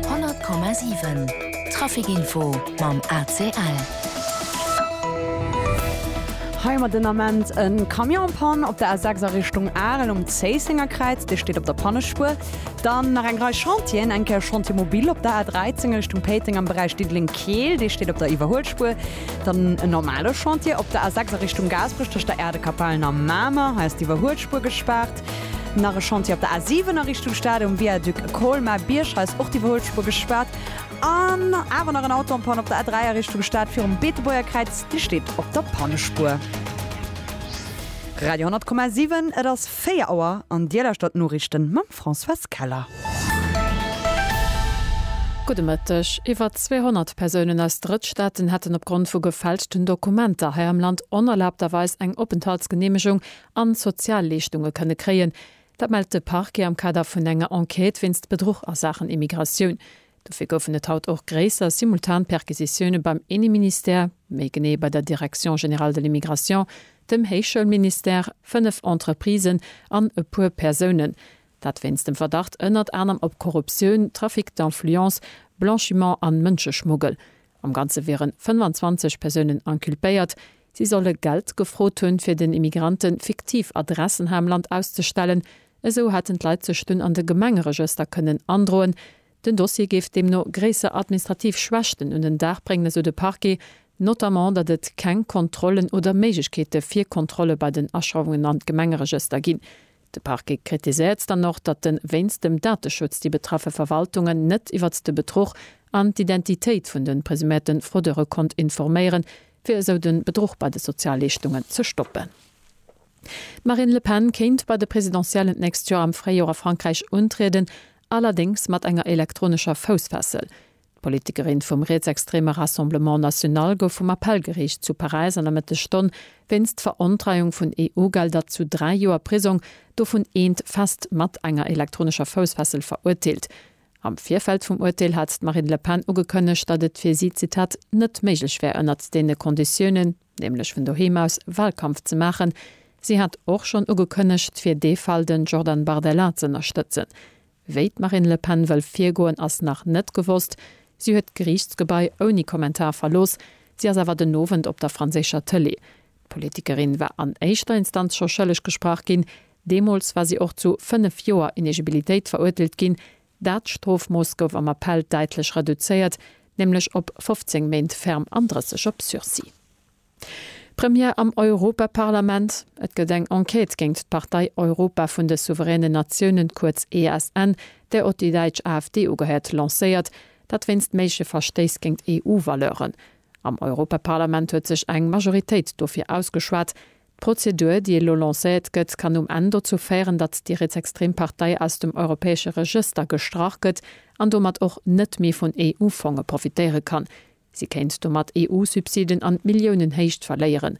100,7 Trafic Info mam ACL. Hei huet den Ament e Camion Panne op der A6 a Richtung Arel um Zéisséngerkräiz, dee steet op der Pannespuer. Dann nach eng Rei Chantieren, eng Kéier Chantier Mobil op der A13 a Richtung Péiteng am Beräich Diddeleng-Keel, dee steet op der Iwwerhuelspuer. Dann en normale Chantier op der A6 a Richtung Gaasperech tëscht der Äerdekapellen a Mamer, hei ass d'Iwwerhuelspuer gespaart. Nach e Chantier op der A7 a Richtung Stad um Viaduc Colmar. Bierghaus ass och d'iwwerholl Spuer gespaart. An awer nach en Auto am Panne op der A3 a Richtung Stad virum Beetebuerger Kräiz. Dee steet op der Pannespuer. Radio 100,7, et ass 4 Auer an Dir lauschtert d'Noriichten mam Françoise Keller. Gudde Mëtteg. Iwwer 200 Persounen aus Drëttstaaten hätten opgrond vu gefälschten Dokumenter hei am Land onerlaabterweis eng Openthaltsgeneemegung an Sozialleeschtunge kënne kréien. Dat mellt de Parquet am Kader vun enger Enquête wéinst Bedruch a Saachen Immigratioun. Dofir goufen et haut och gréisser simultan Perquisitioune beim Inneministère, méi genee bei der Direction générale de l'immigration, dem Héichschoulministère, fënnef Entreprisen an e puer Persounen. Dat wéinst dem Verdacht ënnert anerem op Korruptioun, Trafic d'influence, Blanchiment an Mënscheschmuggel. Am Ganze wieren 25 Persounen inculpéiert, Si solle Geld gefrot hunn, fir den Immigranten fiktiv Adressen hei am Land auszestellen. Esou hätten d'Leit sech dunn an de Gemengeregëster kënnen androen. Den Dossier géif deemno gréisser administrativ Schwächten un den Dag bréngen, esou de Parquet, notamment datt et keng Kontrollen oder Méiglechkeete fir Kontrolle bei den Aschreiwungen an d'Gemengeregëster ginn. De Parquet kritiséiert dann och, datt de wéinst dem Dateschutz déi betraffe Verwaltungen net iwwert de Betruch an d'Identitéit vun de presuméierte Fraudeure konnt informéieren, fir esou de Bedruch bei de Sozialleeschtungen ze stoppen. D'Marine Le Pen kéint bei de Presidentiellen d'nächst Joer am Fréijoer a Frankräich untrieden, allerdéngs mat enger elektronescher Foussfessel. D'Politikerin vum rietsextreme Rassemblement National gouf vum Appellgeriicht zu Paräis an der Mëttesstonn wéinst Verontreiung vun EU-Gelder zu dräi Joer Prisong, dovun eent fest, mat enger elektronescher Foussfessel verurteelt. Am Virfeld vum Urteel hat d'Marine Le Pen ugekënnegt, datt et fir si, Zitat, net méiglech wär ënnert deene Konditiounen, nämlech vun doheem aus, Wahlkampf ze maachen. Si hat och schonn ugekënnegt, fir dee Fall de Jordan Bardella z'ënnerstëtzen. Wéi d'Marine Le Pen wëll virgoen, ass nach net gewosst. Si huet d'Geriichtsgebai ouni Kommentar verlooss. Si ass awer den Owend op der franséischer Tëlee. D'Politikerin war an éischter Instanz scho schëlleg gesprach ginn, Deemools war si och zu fënnef Joer Inegibilitéit verurteelt ginn. Dat Strofmooss gouf am Appell däitlech reduzéiert, nämlech op 15 Méint ferm an 30 op Sursis. Première am Europaparlament, Et gëtt eng Enquête géint d'Partei Europa vun de souveränen Natiounen, kuerz ESN, där och déi däitsch AfD ugehéiert, lancéiert. Dat wéinst méigleche Verstéiss géint EU-Valeuren. Am Europaparlament huet sech eng Majoritéit dofir ausgeschwat. D'Prozedur, déi elo lancéiert gëtt, kann um Enn dozou féieren, datt déi rietsextrem Partei aus dem europäesche Regëster gestrach gëtt an domat och net méi vun EU-Fonge profitéiere kann. Si kéint domat EU-Subsiden an Milliounenhéicht verléieren.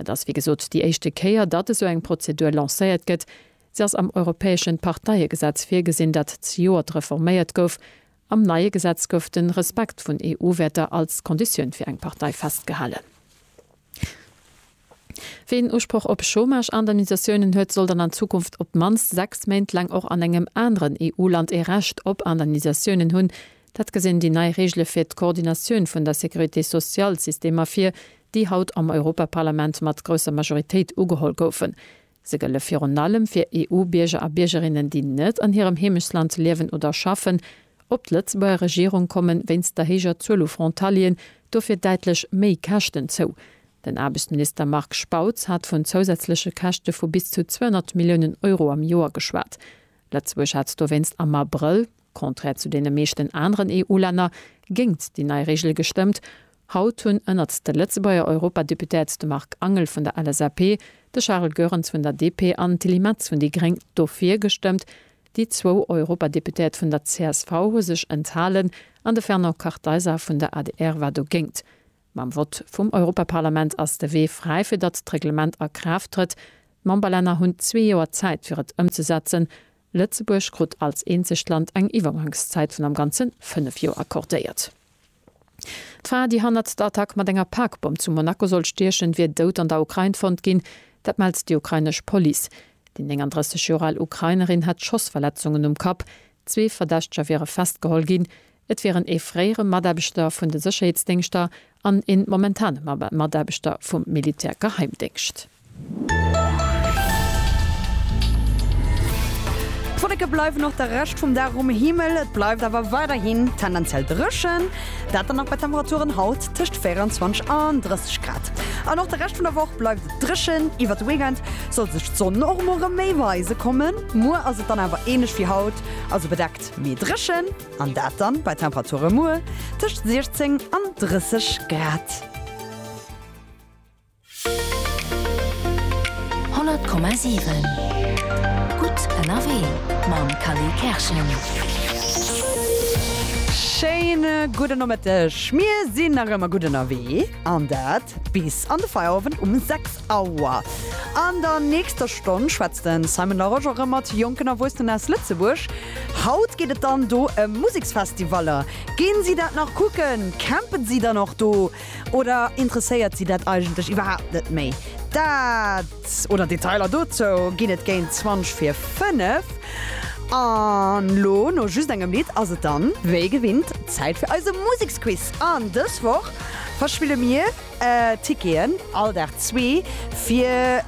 Et ass wéi gesot déi éischte Kéier, datt esou eng Prozedur lancéiert gëtt. Se ass am europäesche Parteiegesetz virgesinn, dat zejoert reforméiert gouf Am neie Gesetz gouf de Respekt vun EU-Wäerter als Konditioun fir eng Partei festgehalen. Ween Usproch op Chômage-Indemnisatiounen huet, soll dann an Zukunft op d'mannst sechs Méint laang och an engem aneren EU-Land ee Recht op Indemnisatiounen hunn. Dat gesinn déi nei Reegele fir d'Koordinatioun vun der Sécurité-sociale-Systemer vir, déi haut am Europaparlament mat grousser Majoritéit ugeholl goufen. Se gëlle virun allem fir EU-Bierger a Biergerinnen, déi net an hirem Heemechtsland liewen oder schaffen, op d'Lëtzebuerger Regierung kommen. Wéinst der héijer Zuel u Frontalieren dofir däitlech méi Käschten zou. Den Aarbechtsminister Marc Spautz hat vun zousätzleche Käschte vu bis zu 200 Milliounen Euro am Joer geschwat. Lëtzebuerg hat dowéinst am Abrëll, contraire zu deene meeschten aneren EU-Länner, géingt déi nei Reegel gestëmmt. Haut hunn ënnert de Lëtzebuerger Europadeputéiert de Marc Angel vun der LSAP, de Charel Goerens vun der DP an d'Tilly Metz vun déi gréng dofir gestëmmt. Déi zwou Europadeputéiert vun der csv hu sech enthalen an de Fernand Kartheiser vun der adr war dogéint. Mam Vott vum Europaparlament ass de Wee fräi fir datt d'Reglement a Kraaft trëtt. D'Memberlänner hunn zwee Joer Zäit fir et ëmzesetzen. Lëtzebuerg krut als eenzegt Land eng Iwwergangszäit vun am Ganze fënnef Joer accordéiert. D'Fra, déi hannert der Attack mat enger Parkbomm zu Monaco sollt stiechen, wier dout an der Ukrain fonnt ginn. Dat mellt déi ukrainesch Police. Déi 39 Joer al Ukrainerin hätt Schossverletzungen um Kapp. Zwee Verdächteger wiere festgeholl ginn. Et wieren ee fréiere Mataarbechter vun de Sécherheetsdéngschter an ee momentane Mataarbechter vum Militärgeheimdéngscht. D'Wolleke bleiwen och de Rescht vum Dag um Himmel, et bleift awer weiderhin tendenziell dréchen, dat dann nach bei Temperaturen haut tëscht 24 an 30 Grad. An och de Rescht vun der Woch bleift et dréchen, iwwert de Weekend soll sech d'Sonn och mol rëm méi weise kommen. Muer ass et dann awer ähnlech wéi haut, also bedeckt mee dréchen, an dat dann bei Temperature muer tëscht 16 an 30 Grad. 100,7 Gutt ënnerwee mam Cally Kerschen. Schéine gudden Nomëtteg. Mir sinn nach ëmmer gutt ënnerwee an dat bis an de Feierowend um 6 Auer. An der nächster Stonn schwätzt de Simon Larosche erëm mat jonken Erwuessenen aus Lëtzebuerg. Haut geet et dann do ëm Museksfestivaller. Ginn si dat nach kucken? Campen si dann och do? Oder interesséiert si dat eigentlech iwwerhaapt net méi? Dat oder Detailer dozou ginn et géint 20 fir 5. An lo, no just engem Lidd, ass et dann wéi gewinnt Zäit fir eise Museksquiz. An dës Woch verspille mir Ticketen, all Dag zwee, fir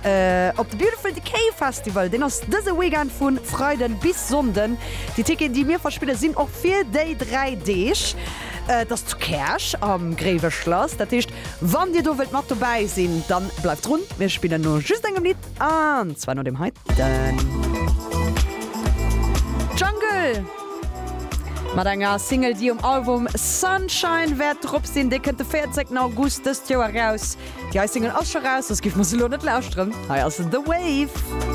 op de Beautiful Decay Festival. Deen ass dëse Weekend vu Freiden bis Sonnden. Déi Ticketen, déi mir verspille sinn och fir déi dräi Deeg. Et ass zu Käerch am Gréiweschlass. Dat heescht, wann dir do wëllt mat dobäi sinn, dann bleift drun. Mir spillen no just engem Lidd, an zwar no deem heiten. Jungle mat enger Single, déi um Album Sunshine wäert drop sinn. Dee kënnt de 14 August dëst Joer eraus. Déi hei Single ass scho raus, soss giff mer se elo net lauschteren. Hei ass The Wave.